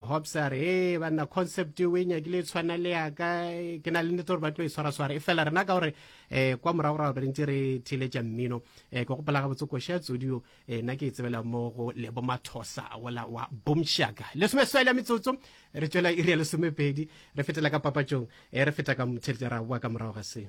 Hobbs a re ee banna concept o e nyakile e tshwana le yaka ke na le nnete gore ba tlo e tshwaraswara e fela rena ka gore um kwa moragorago re ntse re theeletša mmino um ke gopola gabotse koša ya tsodio um eh, nna ke e tsebela mo go lebo mathosa wola wa bomshaka lesome swela metsotso re tswela iri ya lesomepedi re fetela ka papatšong um re feta ka motheletša ra boa ka morago ga seo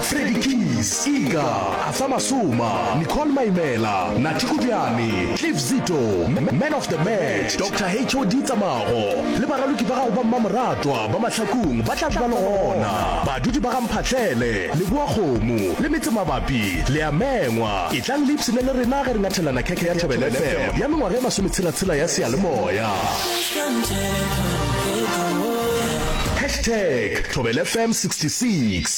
Freddy Keys, Iga, Arthur Masoma, Nicole Maimela, Nathi Kujane, Cliff Zito, Man of the Match, Doctor HOD Tsamago le baraloki ba gago ba mmamoratwa ba Mahlakong ba tla ba le gona. Badudi ba ga Mphahlele, Leboakgomo le Metsemabapi le a mengwa. Etlang le ipshine le rena ge re nyathelana khekhe ya Thobela FM ya mengwaga e masometshela-tshela ya seyalemoya. Hashtag Thobela FM 66.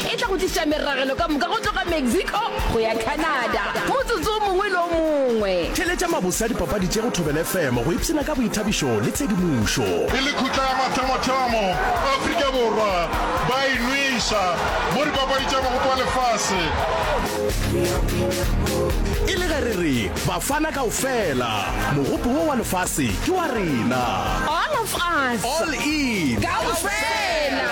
E tla go tliša meragelo ka moka go tloga Mexico go ya Canada, motsotso o mongwe le o mongwe. Theeletša mabose a dipapadi tše go Thobela FM go ipshina ka boithabišo le tshedimošo. E le khutla ya mathomo-thomo Afrika Borwa ba e nweša mo dipapadi tša Mogopo wa Lefase. E le ge re re Bafana kaofela, Mogopo wo wa Lefase ke wa rena. All of us. All in. Kaofela.